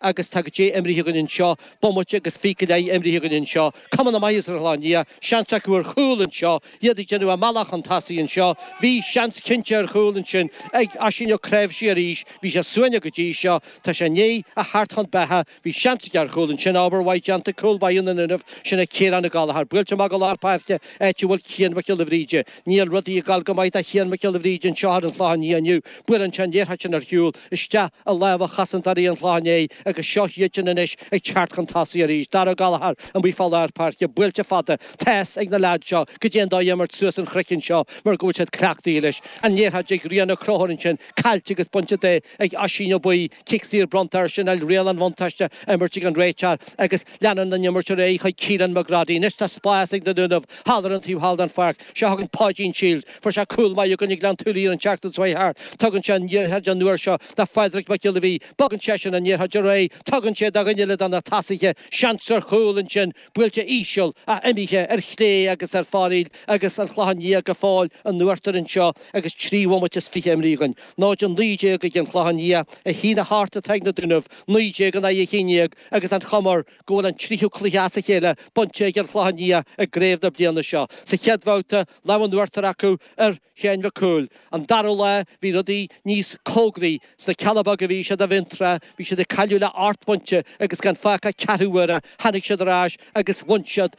agus tá caidé imrithe againn anseo, bomaite agus fiche imrithe againn anseo, cuma na maitheasa ar an Chlochán Liath, seans acu ar chúl anseo, iad ag déanamh a mbealach chun tosaigh anseo, bhí seans cinnte ar chúl ansin ag Oisín Ó Cnáimhsí arís, bhí sé suaimhneach go dtí seo, tá sé i ndiaidh a theacht chun beatha, bhí seans aige ar chúl ansin, obair mhaith déanta ag cúl báire na nDúnaibh, sin é Ciarán Ó Gallchóir, buailte amach go lár páirce áit a bhfuil Cian Mac Giolla Bhríde, níl rudaí ag goil go maith do Chian Mac Giolla Bhríde anseo ar an Chlochán Liath inniu, buaileann sé an liathróid sin ar shiúl, isteach i lámha chosantóirí an Chlocháin Léith agus seo iadsan anois ag teacht chun tosaigh arís. Dara Gallagher amuigh fá lár páirce, buailte fada, tá's ag na leaids seo caidé an dóigh imirt suas an chroiceann seo mar go bhfuil siad cleachtaithe leis. An liathróid ag Ryan Ó Conchúir ansin, caillte agus bainte de ag Oisín Ó Buí, cic saor bronnta air, sin é riail an bhuntáiste imrithe ag an réiteoir agus leanann an imirt ar aghaidh chuig Keelan McGroddy. Anois tá spás ag na Dúnaibh thall ar an taobh thall den pháirc. Seo chugainn Páidín Shields. Fuair sé cúl maith i gcoinne Ghleann tSúilí an tseachtain seo thart. Tugann sé an liathróid an uair seo do Phádraig Mac Giolla Bhuí. Bogann seisean an liathróid ar aghaidh. Tugann sé do dhuine eile de na tosaithe. Seans ar chúl ansin. Buailte íseal, ach imithe ar chlé agus ar foraoil agus An Clochán Liath go fóill in uachtar anseo agus trí bhomaite is fiche imrithe againn. 0-19 ag An Chlochán Liath. A haon a hocht atá ag na Dúnaibh. 19 in aghaidh a haon déag agus an chuma air. go bhfuil an tríú cluiche as a chéile bainte ag an Chlochán Liath i gCraobh na bliana seo. Sa chéad bhabhta, lámh an uachtair acu ar Sheán Mac Cumhaill. An dara lá, bhí rudaí níos cóngaraí. Sna Cealla Beaga a bhí siad i bhFionntrá, bhí siad ag cailleadh le hocht bpointe agus gan fágtha ach ceathrú uaire tháinig siad ar ais agus bhain siad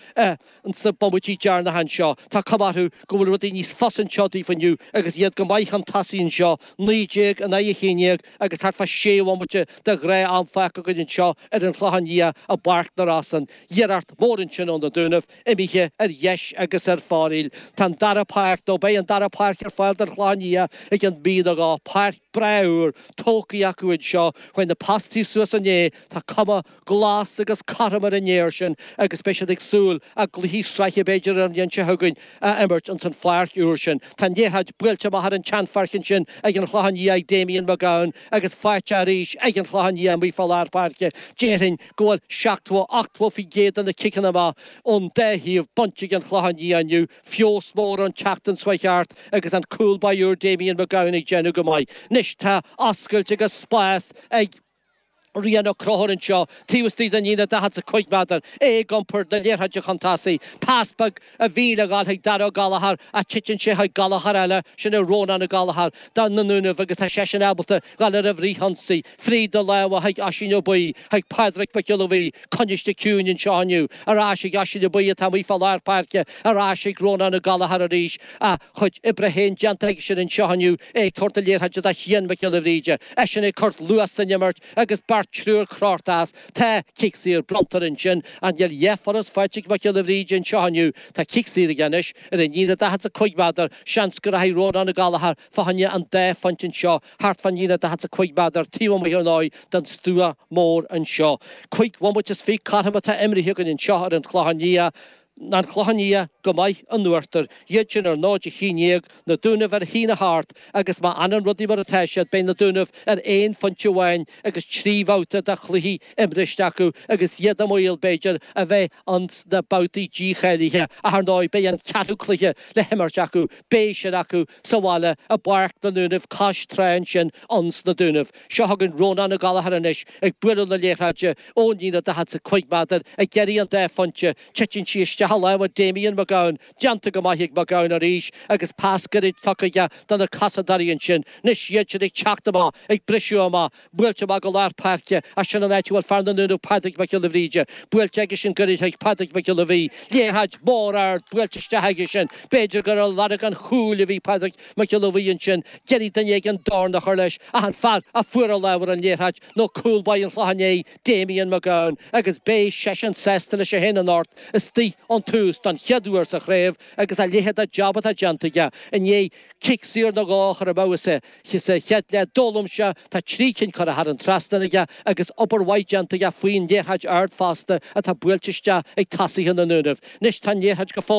ins na bomaití deireanacha annseo. Tá cuma orthu go bhfuil rudaí níos fusa annseo daofa inniu agus iad go maith chun tosaigh annseo. Naoi déag in aghaidh a haon déag agus thart fá sé bhomaite de ghnátham fágtha againn annseo ar an Chlochán Liath i bPáirc na Rosann. Iarracht mhór ansin ó na Dúnaibh imithe ar dheis agus ar foraoil. Tá an dara páirc, nó beidh an dara páirc ar fáil don Chlochán Liath ag an mbliain a dhó. Páirc bhreá úr tógtha acu annseo chuaigh na postaí suas inné tá cuma Glas agus cothrom ar an fhéar sin agus beidh siad ag súil a gcluichí sraithe b'fhéidir an bhliain seo chugainn a imirt ins an pháirc úr sin. Tá an liathróid buailte amach ar an tseanpháirc ansin ag an Chlochán Liath ag Damien McGowan agus faighte arís ag an Chlochán Liath amuigh fá lár páirce. Déarfainn go bhfuil seachtó, ochtó faoin gcéad de na ciceanna amach ón dá thaobh bainte ag an Chlochán Liath inniu. Feabhas mór ón tseachtain seo chuaigh thart agus an cúl báire úr Damien McGowan ag déanamh go maith. Anois tá oscailt agus spás ag. Ryan Ó Conchúir annseo taobh istoigh den líne 45 méadar, é ag iompar na liathróide chun tosaigh, pas beag a bhí le ghoil chuig Dara Gallagher ach titeann sé chuig Gallagher eile, sin é Rónán Ó Gallchóir, do na nDúnaibh agus tá seisean ábalta a ghoil ar an bhfrith-ionsaí, fríd na lámha chuig Oisín Ó Buí, chuig Pádraic Mac Giolla Bhuí, Coinnithe ciúin anseo inniu. Ar ais ag Oisín Ó Buidhe atá amuigh fá lár páirce. Ar ais ag Rónán Ó Gallchóir arís. A chuid oibre féin déanta aigesean anseo inniu, é ag tabhairt na liathróide do Chian Mac Giolla Bhríde. Eisean ag cur luas san imirt agus beirt, triúr crochta as. Tá cic saor bronnta air ansin. Níl a dhath furast faighte ag Mac Giolla Bhríde anseo inniu? Tá cic saor aige anois. Ar an líne daichead 's a cúig méadar. Seans go rachaidh Rónán Ó Gallchóir fá choinne an dá phointe anseo, thart fán líne daichead 's a cúig méadar taobh amuigh ar ndóigh den stua mór anseo. Cúig bhomaite is fiche cothrom atá imrithe againn anseo ar an Chlochán Liath, An Clochán Liath go maith in uachtar, iad sin ar ndóigh a shíniodh Na Dúnaibh ar a shíneadh thart agus má fhanann rudaí mar atá siad beidh Na Dúnaibh ar aon phointe amháin agus trí bhabhta de chluichí imriste acu agus iad i mbaol, b'fhéidir, a bheith ins na babhtaí dícháilithe ach, ar ndóigh, beidh an ceathrú cluiche le himirt acu, beidh sin acu sa bhaile i bPáirc na nDúnaibh cois trá ansin ins na Dúnaibh. Seo chugainn Rónán Ó Gallchóir anois ag bualadh na liathróide ón líne daichead 's a cúig méadar ag iarraidh an dá phointe, titeann sí isteach i lámha Damien Mac Gabhann, Déanta go maith ag Mac Gabhann arís agus pas gairid tugtha aige do na cosantóirí ansin. Anois iad sin ag teacht amach, ag briseadh amach. Buailte amach go lár páirce ach sin an áit a bhfuil fear na nDúnaibh Pádraig Mac Giolla Bhríde. Buailte aige sin gairid chuig Pádraig Mac Giolla Bhuí. Liathróid mhór ard buailte isteach aige sin. B'fhéidir gur ar lorg an chúil a bhí Pádraig Mac Giolla Bhuí ansin. Ag iarraidh duine éigin dorn a chur leis ach an fear a fuair an lámh ar an liathróid nó cúl báire an Chlocháin Léith, Damien McGowan, agus beidh seisean sásta leis féin anocht istigh ón tús don chéad uair sa chraobh agus a leithéad de job atá déanta aige i ndiaidh cic saor nó dhó a chur amú sa chéad leath d'fhoghlaim sé tá trí cinn curtha thar an trasnán aige agus obair mhaith déanta aige faoin liathróid ard fosta atá buailte isteach ag tosaithe na nDúnaibh anois tá an liathróid go